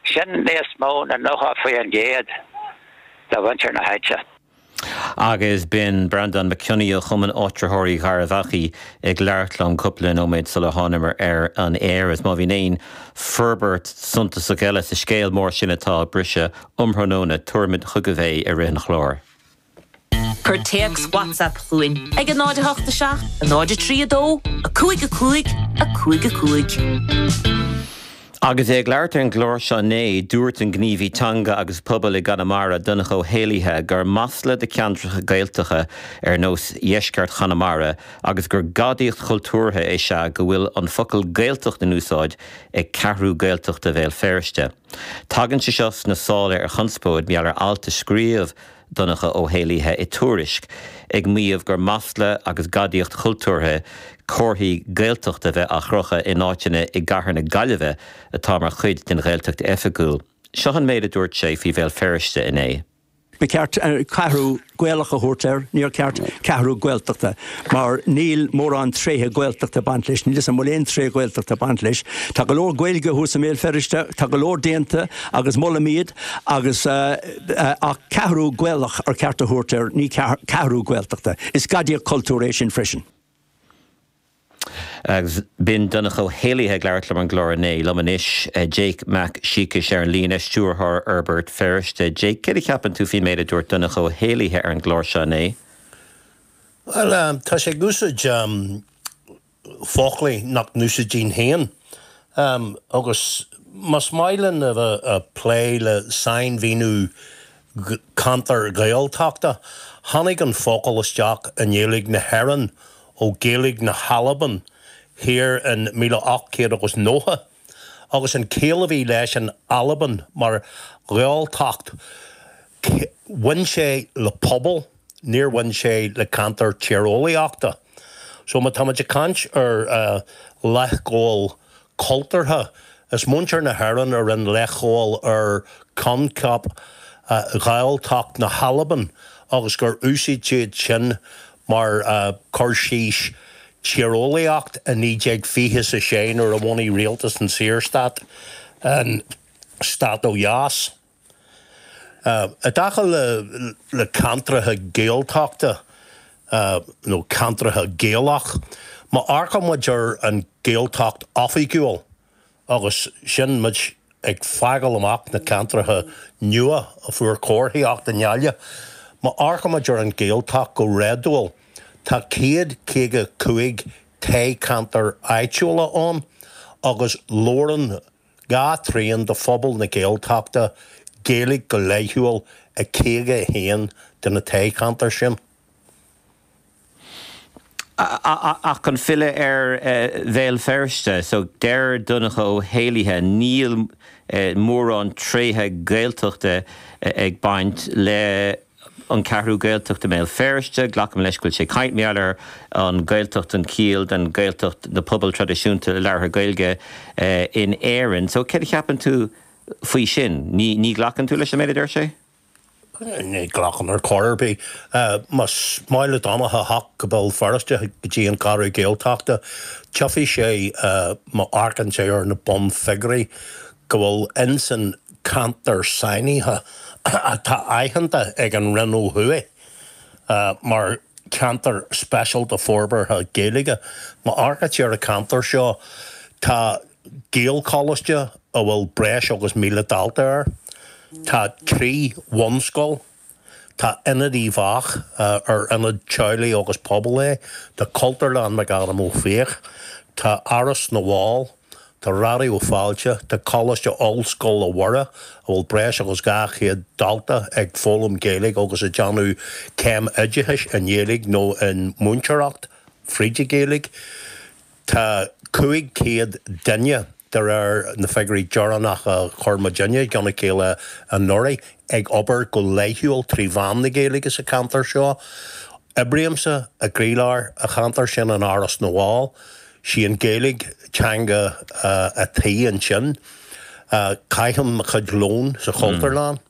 Sin níos mó na 90% de mhuintir na háite. Agus b'in Breandán Mac Cionnaith ó Chumann Áitritheoirí Gharbh Achaidh ag labhairt liom cúpla nóiméad sular thánamar ar an aer. Is má bhíonn aon forbairt suntasach eile sa scéal mór sin atá ag briseadh um thráthnóna, tabharfaimid chugaibh é i rith an chláir. Cuir téacs WhatsApp chugainn ag 08 7 0 3 2 5 5 5 5. Agus é ag labhairt ar an gclár seo inné, dúirt an gníomhaí teanga agus pobail i gConamara, Donncha Ó hÉallaithe, gur masla do cheantracha Gaeltachta ar nós dheisceart Chonamara agus gur gadaíocht chultúrtha is ea go bhfuil an focal 'Gaeltacht' in úsáid ag Ceathrú Gaeltachta Bhéal Feirste. Tagann sé seo sna sála ar chonspóid mar gheall ar alt a scríobh Donncha Ó hÉallaithe i dTuairisc ag maíomh gur masla agus gadaíocht chultúrtha comharthaí Gaeltachta a bheith á chrochadh in áiteanna i gcathair na Gaillimhe atá mar chuid den Ghaeltacht oifigiúil. Seo an méid a dúirt sé faoi Bhéal Feirste inné. Ba cheart Ceathrú Gaelach a thabhairt air, níor cheart Ceathrú Gaeltachta, mar níl mórán tréithe Gaeltachta ag baint leis, níl fhios a'm an bhfuil aon tréith Ghaeltachta ag baint leis. Tá go leor Gaeilge thuas i mBéal Feirste, tá go leor déanta agus molaim iad, Agus ach ceathrú Gaelach ar cheart a thabhairt air, ní ceathrú Gaeltachta. Is gadaíocht cultúir é sin freisin. Agus b'in Donncha Ó hÉallaithe ag labhairt liom ar an gclár inné. Liom anois, Jake Mac Siacais ar an líne, Stiúrthóir Fhorbairt Feirste. Jake, céard a cheapann tú faoin méid a dúirt Donncha Ó hÉallaithe ar an gclár seo inné? Bhuel, tá sé ag úsáid foclaí nach n-úsáidfinn féin agus más maith linn a bheith a' plé le sainmhíniú ceantair Ghaeltachta, tháinig an focal isteach i nGaeilge na hÉireann ó Ghaeilge na hAlban thiar in míle ocht céad agus nócha. agus an ciall a bhí leis in Albain mar Ghaeltacht, bhain sé le pobal, níor bhain sé le ceantar tíreolaíochta. So má táimid ag caint ar leithghabháil cultúrtha, is muintir na hÉireann a rinne leithghabháil ar choincheap Ghaeltacht na hAlban agus gur úsáid siad sin mar cur síos tíreolaíocht i 1926 nuair a bhunaigh rialtas an Saorstát an stát ó dheas. I dtaca le ceantracha Gaeltachta nó ceantracha Gaelach, má amharcann muid ar an Gaeltacht oifigiúil, agus sin muid ag fágáil amach na ceantracha nua a fuair comharthaíocht i nGaillimh. Má amharcaimid ar an Ghaeltacht go réadúil, tá céad caoga cúig toghcheantar áitiúla ann agus labhrann dhá thrian de phobal na Gaeltachta Gaeilge go laethúil i caoga a haon de na toghcheantair sin. Ach chun filleadh ar Bhéal Feirste, deir Donncha Ó hÉallaithe, níl mórán tréithe Gaeltachta ag baint le An Cheathrú Ghaeltachta i mBéal Feirste, glacaim leis go bhfuil sé ag caint i ngeall ar an Ghaeltacht an chiall den Ghaeltacht na pobail traidisiúnta labhartha Gaeilge in Éirinn. Céard a cheapann tú faoi sin? Ní ghlacann tú leis an méid a deir sé? Ní ghlacaim ar chor ar bith. Má ba mhaith le Donnacha a theacht go Béal Feirste, go dtí an Cheathrú Ghaeltachta, tiocfaidh sé má amharcann sé ar na bun figiúirí go bhfuil ins an ceantar sainithe atá aitheanta ag an Roinn ó thuaidh mar cheantar speisialta forbartha Gaeilge. Má amharcann sé ar an cheantar seo, tá. Gaelcholáiste a bhfuil breis agus 1,000 dalta air. Tá trí bhunscoil. Tá Ionad Uíbh Eachach, ar ionad teaghlaigh agus pobail é. Tá Cultúrlann McAdam Ó Fiaich. Tá Áras na bhFál. Tá Raidió Fáilte. Tá Coláiste Ollscoile Mhuire, a bhfuil breis agus 200 dalta ag foghlaim Gaeilge agus ag déanamh céim oideachais i nGaeilge nó i múinteoireacht fríd an Ghaeilge. Tá 500 duine, de réir na figiúirí deireanacha a chuir muidinne i gceann a chéile anuraidh, ag obair go laethúil trí mheán na Gaeilge sa cheantar seo. Oibrímse i gcroílár an cheantair sin in Áras na bhFál. 'Sí an Ghaeilge teanga a' tí ansin. Caithim mo chuid lóin sa Chultúrlann.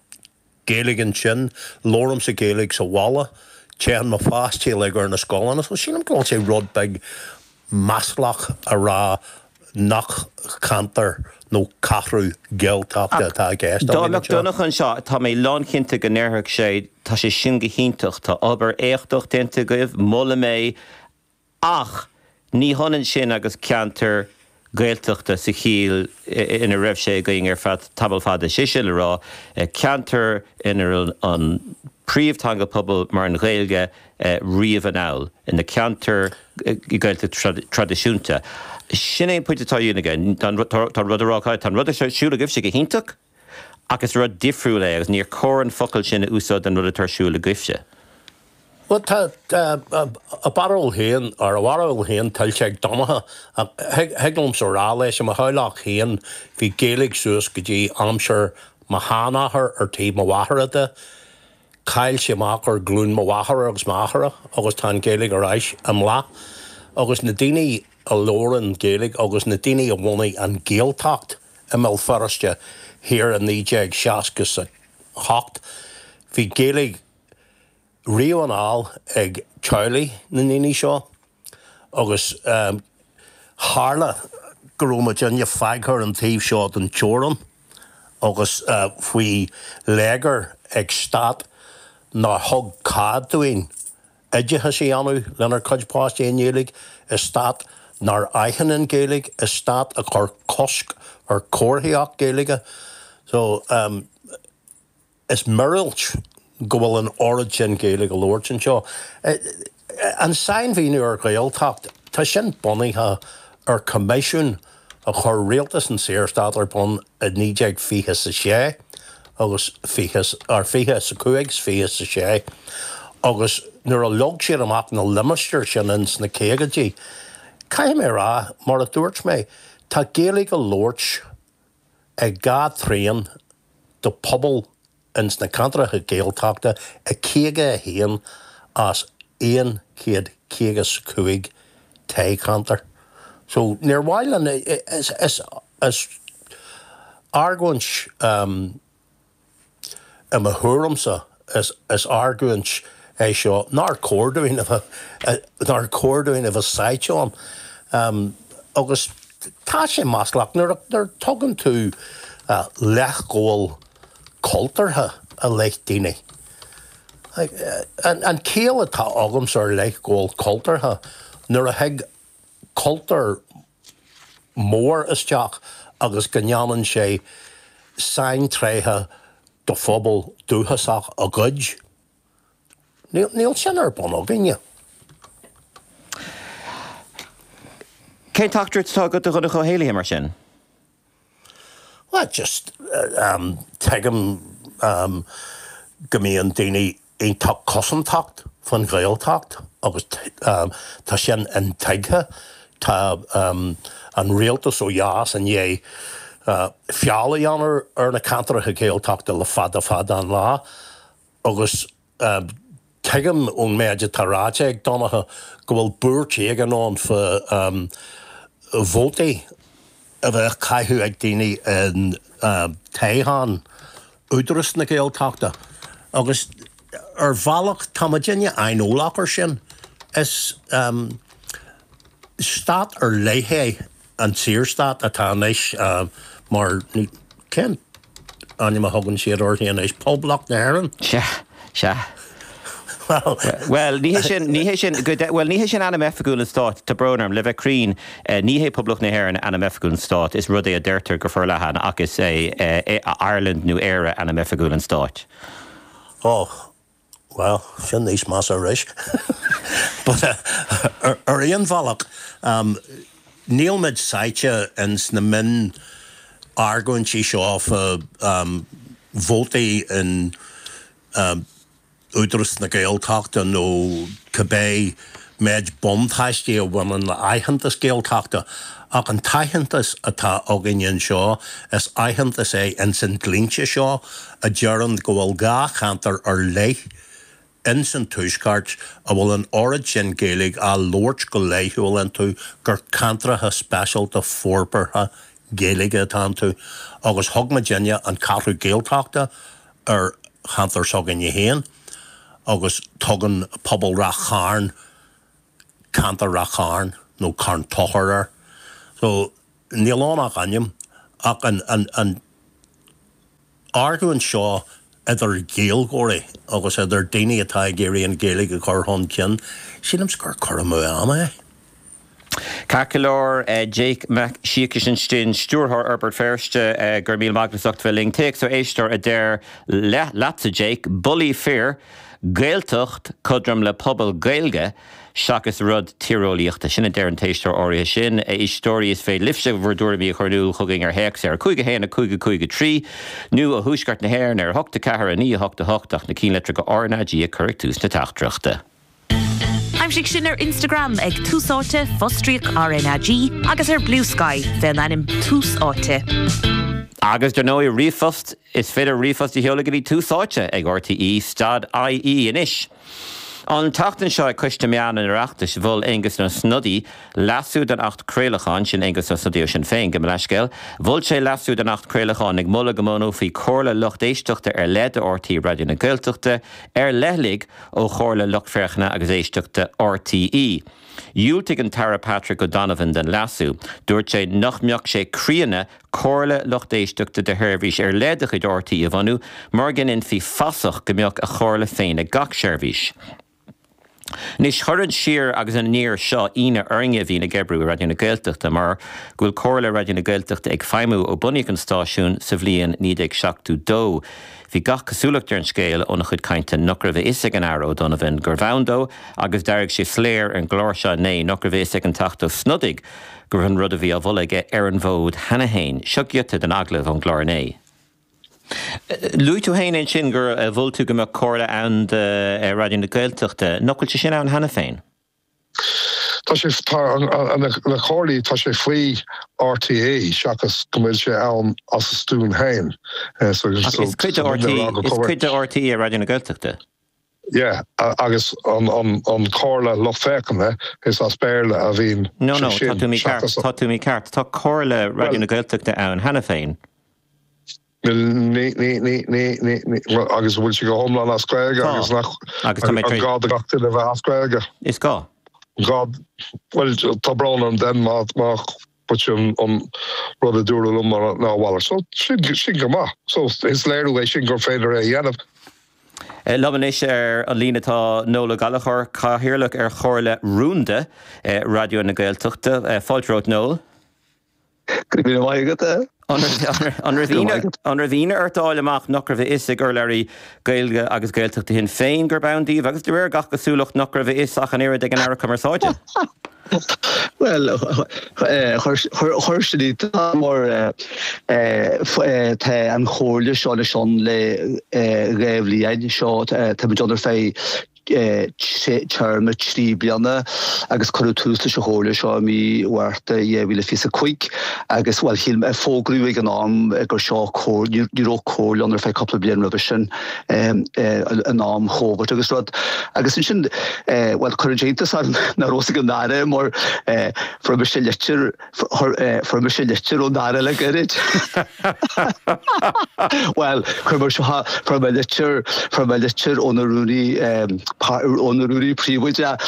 Gaeilge ansin, labhraímse Gaeilge sa bhaile, téann mo pháistí uilig ar na scoileanna, so sílim go bhfuil sé rud beag maslach a rá nach ceantar nó ceathrú Gaeltachta atá i gceist againn. Dá mbeadh Donncha anseo, tá mé lánchinnte go ndéarfadh sé, tá sé sin go hiontach, tá obair éachtach déanta agaibh, molaim é, Ach ní hionann sin agus ceantar Gaeltachta sa chiall ina raibh sé againn ar feadh tamall fada, is é sin le rá, ceantar ina raibh an príomhtheanga pobail mar an Ghaeilge riamh anall, ina ceantar Gaeltachta traidisiúnta. Sin é an pointe atá á dhéanamh aige. Tá sé ag rá leat, tá an rud ar siúl agaibhse go hiontach. Ach is rud difriúil é agus níor chóir an focal sin a úsáid don rud atá ar siúl agaibhse. Bhuel, tá a bharúil féin, ar a bharúil féin, tuillte ag Donncha. Ach thig liomsa a rá leis, i mo theaghlach féin, bhí Gaeilge suas go dtí aimsir mo sheanathar ar taobh mo mháthara de. Cailleadh amach ar ghlún mo mháthara agus m'athara agus tá an Ghaeilge ar ais i mbláth. Agus na daoine a labhrann Gaeilge agus na daoine a bhunaigh an Ghaeltacht, I mBéal Feirste Thiar i 1968 bhí Gaeilge riamh ar fáil ag teaghlaigh na ndaoine seo agus tharla go raibh muidinne fágtha ar an taobh seo den teorainn agus faoi léigear ag stát nár thug cead dúinn. oideachas a dhéanamh lenár gcuid páistí i nGaeilge i stát nár aithin an Ghaeilge, i stát a chuir cosc ar chomharthaíocht Ghaeilge. So, em, is miorúilt go bhfuil an oiread sin Gaeilge á labhairt anseo. An sainmhíniú ar Ghaeltacht, tá sin bunaithe ar choimisiún a. a chuir rialtas an tSaorstáit ar bun i 1920 's 6 agus 20 's, ar 20 's 5 's 20 's 6, agus nuair a leag siad amach na limistéir sin ins na caogaidí, caithfidh mé a rá, mar a dúirt mé, tá Gaeilge á labhairt ag dhá thrian de phobal ins na ceantracha Gaeltachta i 51 as aon chéad caoga 's cúig toghcheantar. So níor mhaith linn, is argóint, i mo thuairimse, is argóint é seo nár chóir dúinn, nár chóir dúinn a bheith sáite ann. Agus tá sé maslach nuair a tugann tú leithghabháil, cultúrtha i leith daoine. An chiall atá agamsa ar leithghabháil chultúrtha, nuair a thig cultúr mór isteach agus go ndéanann sé saintréithe de phobal dúchasach a ghoid. Níl sin ar bun againne. Cén teachtaireacht atá agat do Dhonncha Ó hÉallaithe mar sin? Bhuel just em tuigim em go mbíonn daoine iontach cosantach faoin Ghaeltacht agus em tá sin intuigthe. Tá em an rialtas ó dheas i ndiaidh eh feall a dhéanamh ar na ceantracha Gaeltachta le fada fada an lá agus. Tuigim ón méid atá ráite ag Donncha go bhfuil buairt éigin ann faoi vótaí a bheith á caitheamh ag daoine in toghchán Údaras na Gaeltachta agus ar bhealach tá muidinne aineolach ar sin. Is stát ar leith é an tSaorstát atá anois mar, cén ainm a thugann siad air anois, Poblacht na hÉireann? Sea, sea. Bhuel, ní hé sin, bhuel, ní hé sin ainm oifigiúil an Stáit, tá brón orm, le bheith cruinn, ní hé Poblacht na hÉireann ainm oifigiúil an Stáit, is rud é a deirtear go forleathan ach is é Ireland nó Éire ainm oifigiúil an Stáit. Ó, Bhuel, sin níos measa arís. But ar aon bhealach, níl muid sáite ins na mionargóintí seo fá vótaí in Údaras na Gaeltachta nó cibé Méid buntáistí a bhaineann le haitheantas Gaeltachta ach an t-aitheantas atá againn anseo is aitheantas é ins an dlínse seo a deireann go bhfuil dhá cheantar ar leith ins an tuaisceart a bhfuil an oiread sin Gaeilge á labhairt go laethúil iontu gur ceantracha speisialta forbartha Gaeilge atá iontu agus thug muidinne an Cheathrú Ghaeltachta ar cheantar s'againne féin. agus tugann pobal Rath Chairn ceantar Rath Chairn nó Carn Tóchair air. So níl ann ach ainm ach an argóint seo idir Ghaeilgeoirí agus idir daoine atá ag iarraidh an Ghaeilge a chur chun cinn, sílim gur cur amú ama é. Ceart go leor, Jake Mac Siacais ansin, Stiúrthóir Fhorbairt Feirste, Go raibh míle maith agat as ucht bheith linn. Téacs ó éisteoir a deir leatsa, Jake, Bulaí fir! Gaeltacht cothrom le pobal Gaeilge seachas rud tíreolaíochta. Sin a deir an t-éisteoir áirithe sin. A éisteoirí, is féidir libhse bhur dtuairimí a chur in iúl chugainn ar théacs ar 5 1 5 5 3 nó ó Thuaisceart na hÉireann ar 8 4 9 8 8 ach na cinnlitreacha RnaG a chur ag tús na teachtaireachta. Aimsigh sinn ar Instagram ag Tús Áite, fostríoc, RnaG, agus ar Bluesky fé an ainm Tús Áite. Agus dar ndóigh, ríomhphost, is féidir ríomhphost a sheoladh go dtí Tús Áite ag RTÉ stad IE. Anois, an tseachtain seo ag Coiste Meán an Oireachtais mhol Aengus Ó Snodaigh leasú don Acht Craolacháin, sin Aengus Ó Snodaigh ó Shinn Féin, gabh mo leithscéal, mhol sé leasú don Acht Craolacháin ag moladh go mbunófaí Comhairle Lucht Éisteachta ar leith do RTÉ Raidió na Gaeltachta ar leithligh, ó Chomhairle Lucht Féachana agus Éisteachta RTÉ. Dhiúltaigh an tAire Patrick O'Donovan don leasú. Dúirt sé nach mbeadh sé críonna Comhairle Lucht Éisteachta do sheirbhís ar leith de chuid RTÉ a bhunú mar go ndéanfaí fasach go mbeadh a chomhairle féin ag gach seirbhís. Anois, chuir an siar agus an aniar seo ionadh orainne a bhíonn ag oibriú i Raidió na Gaeltachta mar go bhfuil Comhairle Raidió na Gaeltachta ag feidhmiú ó bunaíodh an stáisiún sa bhliain 1972. Bhí gach cosúlacht ar an scéal óna chuid cainte nach raibh a fhios ag an Aire O'Donovan gurbh ann dó agus d'éirigh sé soiléir ar an gclár seo inné nach raibh a fhios ag an Teachta Ó Snodaigh go raibh an rud a bhí á mholadh aige ar an bhfód cheana féin. Seo giota den agallamh ón gclár inné. Luaigh tú féin ansin gur mhol tú go mbeadh Comhairle ann do Raidió na Gaeltachta. Nach bhfuil sé sin ann cheana féin? Tá sé tá na comhairlí tá sé faoi RTÉ seachas go bhfuil sé ann as a stuaim féin. Ach is cuid de RT is cuid de RTÉ Raidió na Gaeltachta. Yeah agus an an an comhairle lucht féachana is as Béarla a bhíonn No no tá tú mícheart tá tú mícheart tá comhairle Raidió na Gaeltachta ann cheana féin. Níl agus bhfuil sé go hiomlán as Gaeilge agus nach agus is gá do gach duine a bheith as Gaeilge. Is gá. gá bhuel tá brón orm then má má but an an rud a dúradh liom mar ná a mhalairt so sin sin go maith so is léiriú é sin gur féidir é a dhéanamh. Liom anois ar an líne tá Noel Ó Gallchóir, Cathaoirleach ar Chomhairle Rúnda Raidió na Gaeltachta. Fáilte romhat Noel. Go raibh maith agat a. An raibh ionadh, an raibh ionadh ort a fháil amach nach raibh a fhios ag urlabhraí Gaeilge agus Gaeltachta Shinn Féin gurb ann daoibh agus de réir gach cosúlacht nach raibh a fhios ach an oiread ag an Aire Cumarsáide? Bhuel, chuir, chuir sin iontas mar tá an chomhairle seo le Seán le dhá bhliain seo, táimid ann ar feadh téarma trí bliana agus cuireadh tús leis an chomhairle seo i mí Mhárta dhá mhíle is fiche a cúig agus bhuel shíl mé, fógraíodh ag an am gur seo comh, ní, ní raibh comhairle ann ar feadh cúpla bliain roimhe sin in am Covid agus rud agus ansin bhuel cuireadh iontas orm nach raibh a fhios ag an Aire mar fuair mise litir, fuair mise litir ón Aire le gairid. Bhuel, chuir mé seo fuair mé litir fuair mé litir óna rúnaí óna rúnaí príobháideach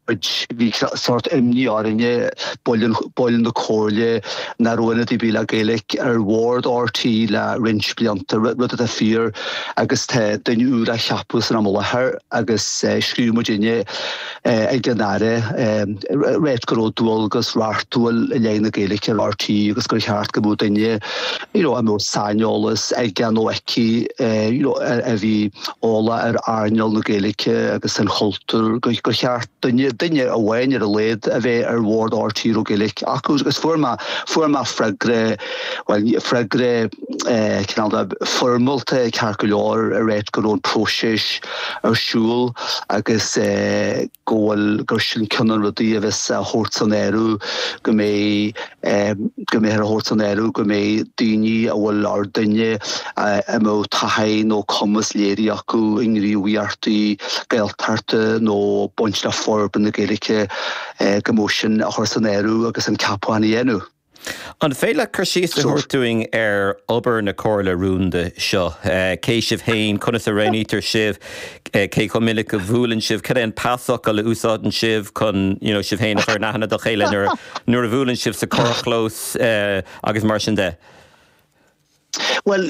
bhí sórt imní orainne baill na comhairle nach raibh ionadaí le Gaeilge ar bhord RTÉ le roinnt blianta rud atá fíor agus tá duine úr á cheapadh san am i láthair agus scríobh muid inné ag an Aire a rá go raibh dualgas reachtúil i leith na Gaeilge ar RTÉ agus gur cheart go mbeadh duine a mbeadh saineolas aige nó aici a bhí eolach ar earnáil na Gaeilge agus an chultúir gur cheart duine amháin ar a laghad a bheith ar bhord RTÉ a raibh Gaeilge acu. Agus fuair mé freagra, bhuel, freagra, eh, cineál foirmeálta ceart go leor a rá go raibh an próiseas ar siúl agus eh, go bhfuil gur sin cionn de na rudaí a bheas a thabhairt san áireamh go mbeidh eh, go mbeidh a thabhairt san áireamh go mbeidh daoine a bhfuil nó duine eh, a mbeadh taithí nó cumas léirithe acu i ngníomhaíochtaí Gaeltachta nó baint le forbairt na Gaeilge eh, go mbeadh sin á chur san áireamh agus an ceapachán á dhéanamh. An féidir leat cur síos a thabhairt dúinn ar obair na comhairle rúnda seo? Cé sibh féin, conas a roghnaítear sibh, cé chomh minic a bhuaileann sibh, cad é an pasfhocal a úsáideann sibh chun you know sibh féin a chur in aithne do chéile nuair nuair a bhuaileann sibh sa charrchlós agus mar sin de? Bhuel,